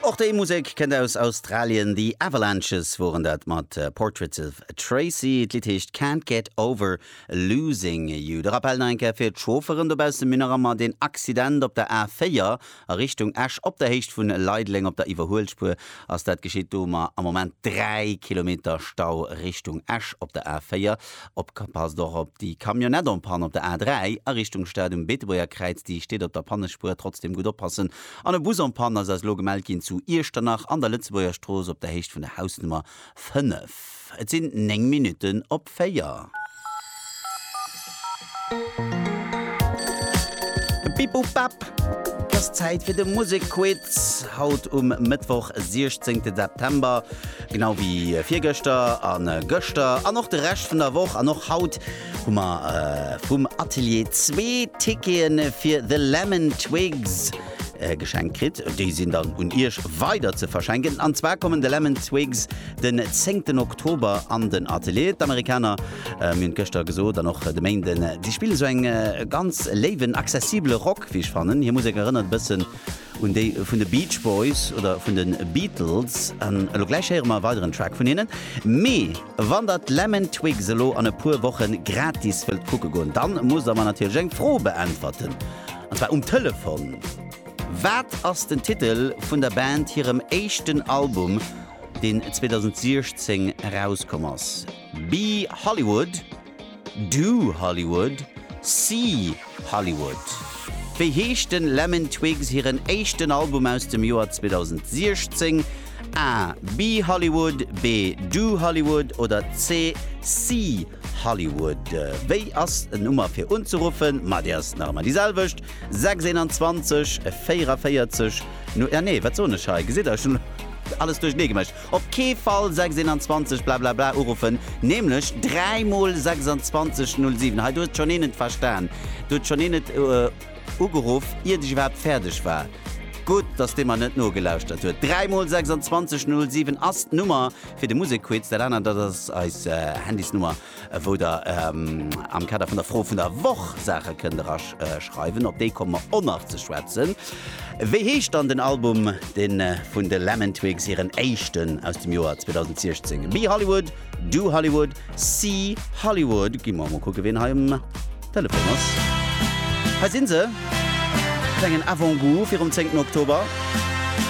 Och déi Musek kënnt aus Australien, The Avalanches woren dat mat Portraits of Tracy. D'Lidd heescht Can't Get Over Losing You. De Rappell nach eng Kéier fir d'Chaufferen dobaussen, Mir nach ëmmer deen Accident op der A4 a Richtung Esch op der Héicht vun Leideleng op der Iwwerhuelspuer ass dat geschitt. Do hu mer am Moment 3 Kilometer Stau Richtung Esch op der A4. Opgepasst och op déi Camionnette en panne op der A3 a Richtung Stad um Beetebuerger Kräiz, déi steet op der Pannespuer. Trotzdem gutt oppassen an e Bus en panne ass eis elo gemellt ginn zu Iechternach an der Lëtzebuerger Strooss op der Héicht vun der Hausnummer 5. Et sinn 9 Minutten op 4. Bip-Bop-Bap, et ass Zäit fir de Musekquiz haut um Mëttwoch 16 September. Genau wéi virgëschter an gëschter an och de Rescht vun der Woch an och haut hu mer vum Atelier zwee Tickete fir The Lemon Twigs geschenkt kritt. Déi sinn dann un Iech weider ze verschenken. An zwar kommen The Lemon Twigs den zéngten Oktober an den Atelier. D'Amerikaner, mir hunn et gëschter gesot an och de Méinden, déi spillen esou eng ganz léiwen, accessibele Rock, wéi ech fannen. Hir Musek erënnert e bëssen un déi vun de Beach Boys oder vun de Beatles. An elo gläich héiere mer e weideren Track vun hinnen. Mee wann der d'Lemon Twigs elo an e puer Woche gratis wëllt kucke goen, dann musst der mer natierlech eng Fro beäntwerten, an zwar um Telefon. Wat ass den Titel vun der Band hirem éischten Album, deen 2016 erauskomm ass? Be Hollywood? Do Hollywood, See Hollywood. Wéi heescht den Lemon Twigs hiren éischten Album aus dem Joer 2016? A Be Hollywood, B Do Hollywood oder C See Hollywood? Wéi ass en Nummer fir unzeruffen? Ma déi ass nach ëmmer déi selwecht, 621 44 nu, ah nee wat soen ech hei, gesitt der, ech hunn alles duerchernee gemécht. Op kee Fall 621 blablabla uruffen, nämlech dräi mol 2607. Hei, do huet schonn een et verstan. Do huet schonn een et ugeruff, iert ech iwwerhaapt fäerdeg war. Gutt, dass dee mer net nogelauschtert huet. Dräi mol 2607 ass d'Nummer fir de Musekquiz. Dat anert, dat ass eis Handysnummer. wou der am Kader vun der Fro vun der Woch Saache kënnt eraschreiwen. Op déi komme mer och nach ze schwätzen. Wéi heescht dann den Album, dee vun de Lemon Twigs hiren éischten aus dem Joer 2016? Be Hollywood, Do Hollywood, See Hollywood? Gi mer emol kucke wien hei um Telefon ass. Hei si se, e klengen Avant-Goût virum 10 Oktober.